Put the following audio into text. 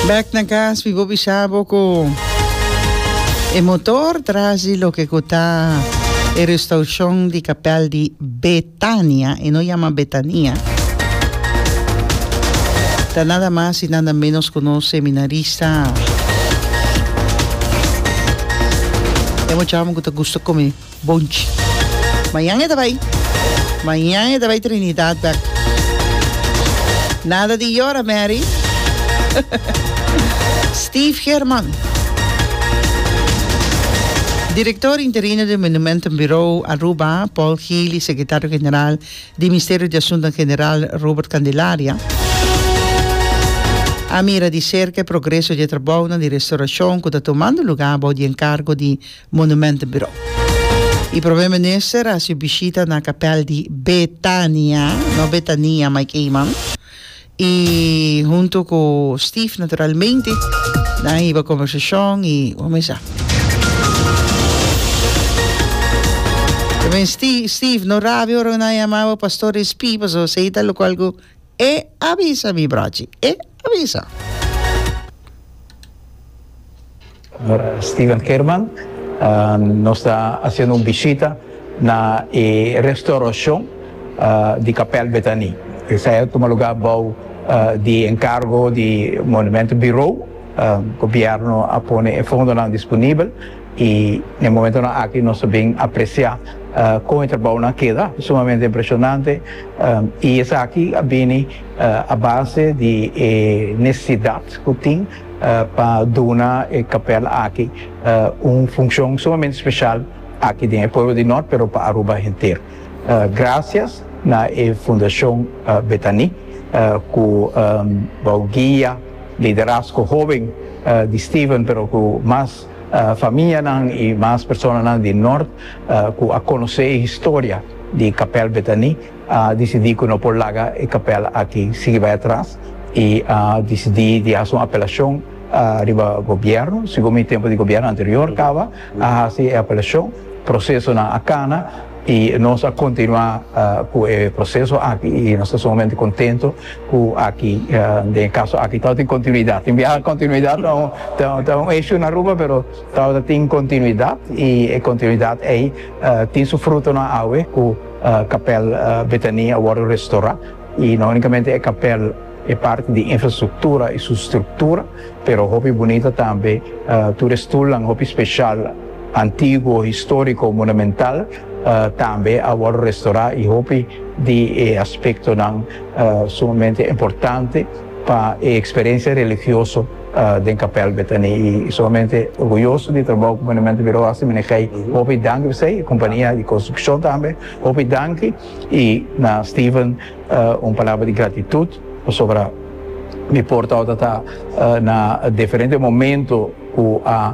Back na gas, mi bo bisha bo ku e motor tras di loke ku ta e restaushon di kapèl di Betania, e no yama Betania, ta nada mas i nada ménos ku nos seminarista. E muchama ku ta gusto kome. Bonchi. Mañan e ta bai. Mañan e ta bai Trinidad bek. Nada di yora Mary. Steve German. Director interino di Monumentum Bureau Aruba, Paul Gil y Secretario General di Misterio di Asuntonan General, Robert Candelaria, a mira di cerca e progreso di e trabounan di restauracion cu ta tomando lugar bou di encargo di Monumentenbureau. E Prome Minister a hasi bishita na kapèl di Betania, no Betania, Mike Eman, i huntu ku Steve naturalmente nan a hiba kombersashon i kumesa. Tabatin Steve, no rabia ora nan a yama bo Pastor Espi, pasobra esei ta lokual ku e a bisa mi brochi. E. Ta bisa. Steven German nos ta haciendo un bishita na e restauracion di Capel Bethanie. Esai a tuma lugar bao di encargo di Monumento Bureau. Gobierno a pone e fondonan disponibel y na e momentonan aki nos ta bin aprecia con e trabaonan keda. Sumamente impresionante y esaki a bini. A base di e nesesidat ku tin pa duna e kapèl aki un funshon sumamente speshal aki den e pueblo di Nort pero pa Aruba henter. Grasias na e Fundashon Betani ku bou guia liderasko hoben di Steven pero ku mas famianan i mas personanan di Nort ku a konosé e historia di kapèl Betani, a disidí ku no por laga e kapèl aki sigui bai atras i a disidí di hasi un apelashon riba gobièrnu. Segun mi tempu di gobièrnu anterior kaba, a hasi e apelashon, prosesonan a kana i nos a kontinuá ku e proseso aki i nos ta sumamente kontentu ku aki den e kaso aki tabata tin kontinuidat. Tin biaha kontinuidat ta un eshun na Aruba pero tabata tin kontinuidat i e kontinuidat ei tin su frutonan awe ku. Kapèl Betania a wòrdu restorá, i no únikamente e kapèl, e parti di infrastruktura i su struktura, pero hopi bunita tambe, tur e stulnan hopi spesial, antiguo, históriko, monumental, tambe a wòrdu restorá i hopi di e aspektonan sumamente importante pa e eksperensia religioso. den kapèl Betani i sumamente orguyoso di trabou ku Monumento Biro hasi manej'ei hopi danki pa esei kompania di konstrukshon tambe hopi danki i na Steven un palabra di gratitut pasobra mi por tabata ta na diferente momento ku a.